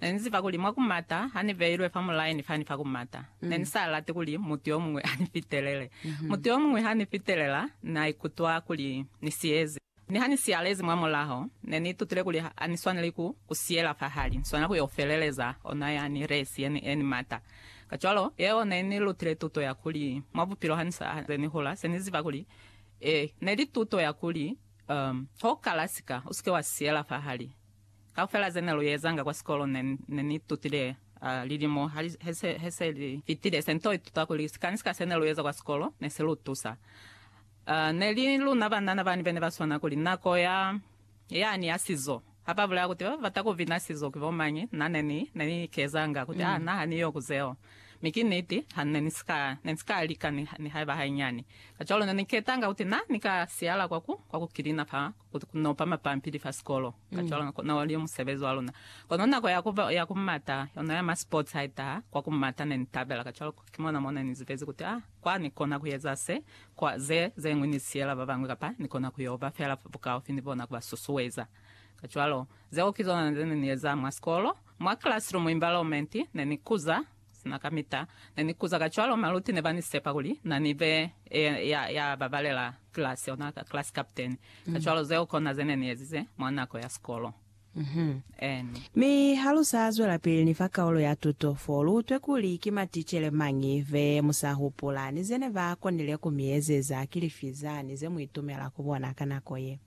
Ne ni ziba kuli mwa ku mata ha ni beilwe fa mulayo ni fani fa ku mata. Ne ni sa lati kuli mutu yo muñwi a ni fitelele. Mutu yo muñwi ha ni fitelela, na ikutwa kuli ni siyezi. Mi ha ni siyalezi mwa mulaho, ne ni itutile kuli ha ni swaneli ku ku siyela fahali, ni swanela ku yo feleleza ona ya ni resi ye ni, ye ni mata. Kacwalo, yeo ne ni lutile tuto ya kuli mwa bupilo ha ni sa ze ni hula, se ni ziba kuli, ee, ne li tuto ya kuli, um, ha u kala sika, u si ke wa siyela fahali. Kaufela ze ne lu ezanga kwa sikolo ne, ne ni itutile, a, lilimo ha li, he se, he se li fitile, se nto ituta kuli sikani sika se ne lu eza kwa sikolo ne si lu tusa. A, ne li luna banana bani bene ba swana kuli, Nako ya, yani ya sizo. Ha ba bulela kuti ba bata ku bina sizo ki bo mañi, na ne ni, ne ni ikezanga kuti, A, na ha ni yo ku zeo. Mi ki niti, ha ne ni si ka, ne ni si ka lika ni, nihaiba hainyani. Kacwalo ne ni ketanga kuti na ni ka siyala kwa ku, kwa ku kilina fa Ku nopa mapampili fa sikolo, kacwalo, kona wali yo musebezi wa luna. Kono nako ya ku, ya ku mata, yona ya ma sports ha i taha, kwa ku mata ne ni tabela. Kacwalo, ki mona mo ne ni zibezi kuti, Ah, kwa ni kona ku eza se, kwa ze, zeñwi ni siyela ba bañwi, kapa ni kona ku yo ba fela bukaufi ni bona ku ba susueza. Kacwalo, zeo ki zona ze ne ni eza mwa sikolo, mwa classroom environment, ne ni kuza, Sina kamita ne ni kuza kacwalo, maluti ne ba ni sepa kuli na ni be ya, ya babalela kilasi, ona class captain. Kacwalo zeo kona ze ne ni ezize mwa nako ya sikolo. Ann. Mi ha lu sa zwelapili ni fa kaulo ya tuto, fo lu utwe kuli ki maticele mañi be mu sa hupula, ni ze ne ba konile ku mi ezeza, ki lifi zani ze mu itumela ku bona ka nako ye.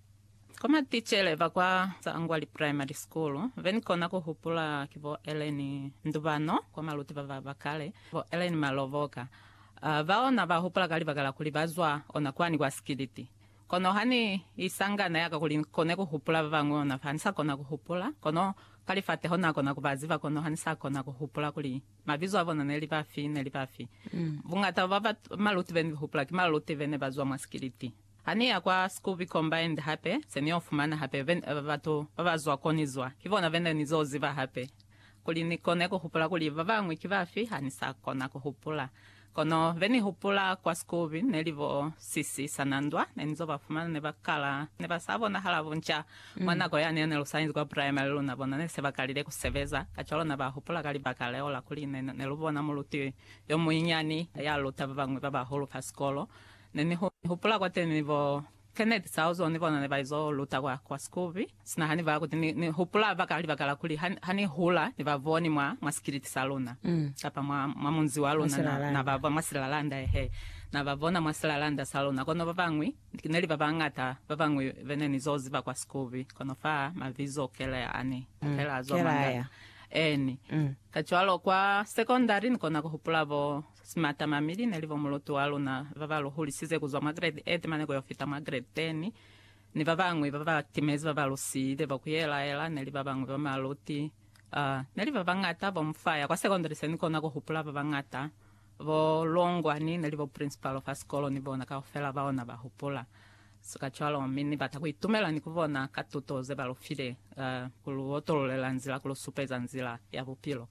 Ko maticele ba kwa Tsangwali Primary School be ni kona ku hupula ki bo Ellen Ndubano kwa maluti ba ba ba kale, bo Ellen Malovoka. Bao na ba hupula ka libaka la kuli ba zwa ona kwani kwa Sikiliti. Kono ha ni isangana ya ka kuli ni kone ku hupula ba bañwi ona fa ha ni sa kona ku hupula, kono ka lifateho na kona ku ba ziba kono ha ni sa kona ku hupula kuli mabizo a bona ne li bafi, ne li bafi. Bungata bwa ba maluti be ni hupula ki maluti be ne ba zwa mwa Sikiliti. Ha ni ya kwa Scooby Combined hape, se ni yo fumana hape batu ba ba zwa ko ni zwa. Ki bona bene ni zo ziba hape. Kuli ni kone ku hupula kuli ba bañwi ki bafi, ha ni sa kona ku hupula. Kono be ni hupula kwa Scooby ne li bo Sisi Sanandwa. Ne ni zo ba fumana ne ba kala, ne ba sa bonahala bunca. Mwa nako yani ya ne lu sa inzi kwa primary, luna bona ne se ba kalile ku sebeza. Kacwalo na ba hupula ka libaka leo la kuli ne lu bona muluti yo munyinyani ya luta ba bañwi ba bahulu fa sikolo. Ne ni hupula kwateni bo Kenneth Sauzo ni bona ne ba izo luta kwa, kwa Scooby. Sina ha ni bala kuti ni, ni hupula baka, libaka la kuli ha, ha ni hula ni ba boni mwa, mwa sikiliti sa luna, kapa mwa, mwa munzi wa luna, na, na ba bona mwa silalanda, ehe, na ba bona mwa silalanda sa luna. Kono babañwi, neli babañata babañwi be ne ni zo ziba kwa Scooby, kono fa mabizo kele ani kela a zwa mangana. Eeni. Kacwalo kwa sekondari ni kona ku hupula bo. Simatamami li ne li bo muluti wa luna ba ba lu hulisize ku zwa mwa grade 8 mane ku yo fita mwa grade 10, ni ba bañwi ba ba timezi ba ba lu siile bo ku yelaela ne li ba bañwi ba maluti. Uh, ne li ba bañata bo mu faya kwa sekondari se ni kona ku hupula ba bañata. Bo Longwani ne li bo principal fa sikolo ni bona kaufela bao na ba hupula. So kacwalo mi ni bata ku itumela ni ku bona ka tuto ze ba lu file, uh, ku lu otololela nzila, ku lu supeza nzila ya bupilo.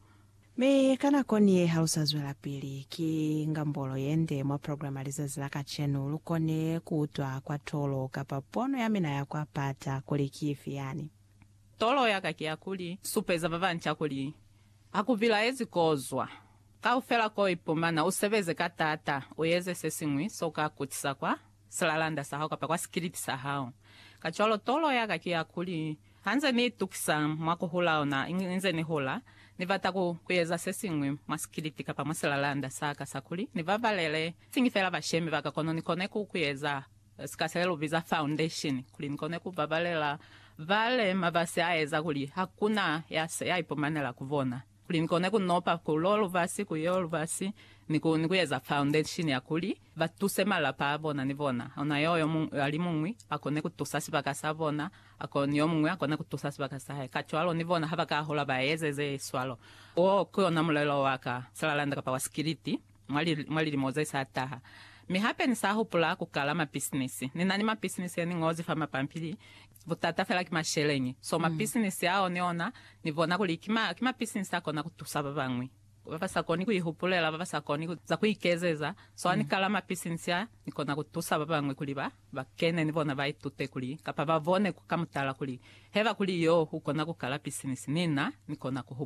Mi ka nako niye ha lu sa zwelapili ki ngambolo yende mwa programa lizazi la kacenu, lu kone ku utwa kwa tolo kapa pono ya mina ya kwa pata kuli ki ifi yani. Tolo ya ka ki ya kuli supeza ba banca kuli ha ku bilaezi kozwa kaufela ko ipumana, u sebeze ka taata, u eze se siñwi so ka kutisa kwa silalanda sa hao kapa kwa sikilipi sa hao. Kacwalo tolo ya ka ki ya kuli Ha nze ni itukisa mwa ku hula ona, inze ni hula, ni bata ku, ku eza se siñwi mwa sikiliti kapa mwa silalanda sa ka sa kuli ni babalele, siñi fela bashemi ba ka, kono ni kone ku, ku eza sika se lu biza foundation, kuli ni kone ku babalela bale mabasi a eza kuli hakuna ya, ya ipumanela ku bona. kuli ni kone ku nopa ku lo lubasi ku yo lubasi ni ku ni ku eza foundation ya kuli ba tuse malapa a bona ni bona ona yo yo muñwi a li muñwi a kone ku tusa sibaka sa bona a ko ni yo muñwi a kone ku tusa sibaka sa hae kacwalo ni bona ha ba ka hola ba eze ze swalo. Wo ki ona mulelo wa ka salalanda kapa wa sikiliti mwa li mwa lilimo ze sa taha. Mi hape ni sa hupula ku kala mapisinisi. Ni na ni mapisinisi ye ni ñozi fa mapampili Butata fela ki masheleñi. So mapisinisi ao ni ona, ni bona kuli ki ma, ki mapisinisi a kona ku tusa ba bañwi, ba ba sa koni ku ihupulela, ba ba sa koni ku, za ku ikezeza. So ha ni kala mapisinisi a, ni kona ku tusa ba bañwi kuli ba, ba kene ni bona ba itute kuli, kapa ba bone ku ka mutala kuli, heba kuli yo u kona ku kala pisinisi, ni na, ni kona ku.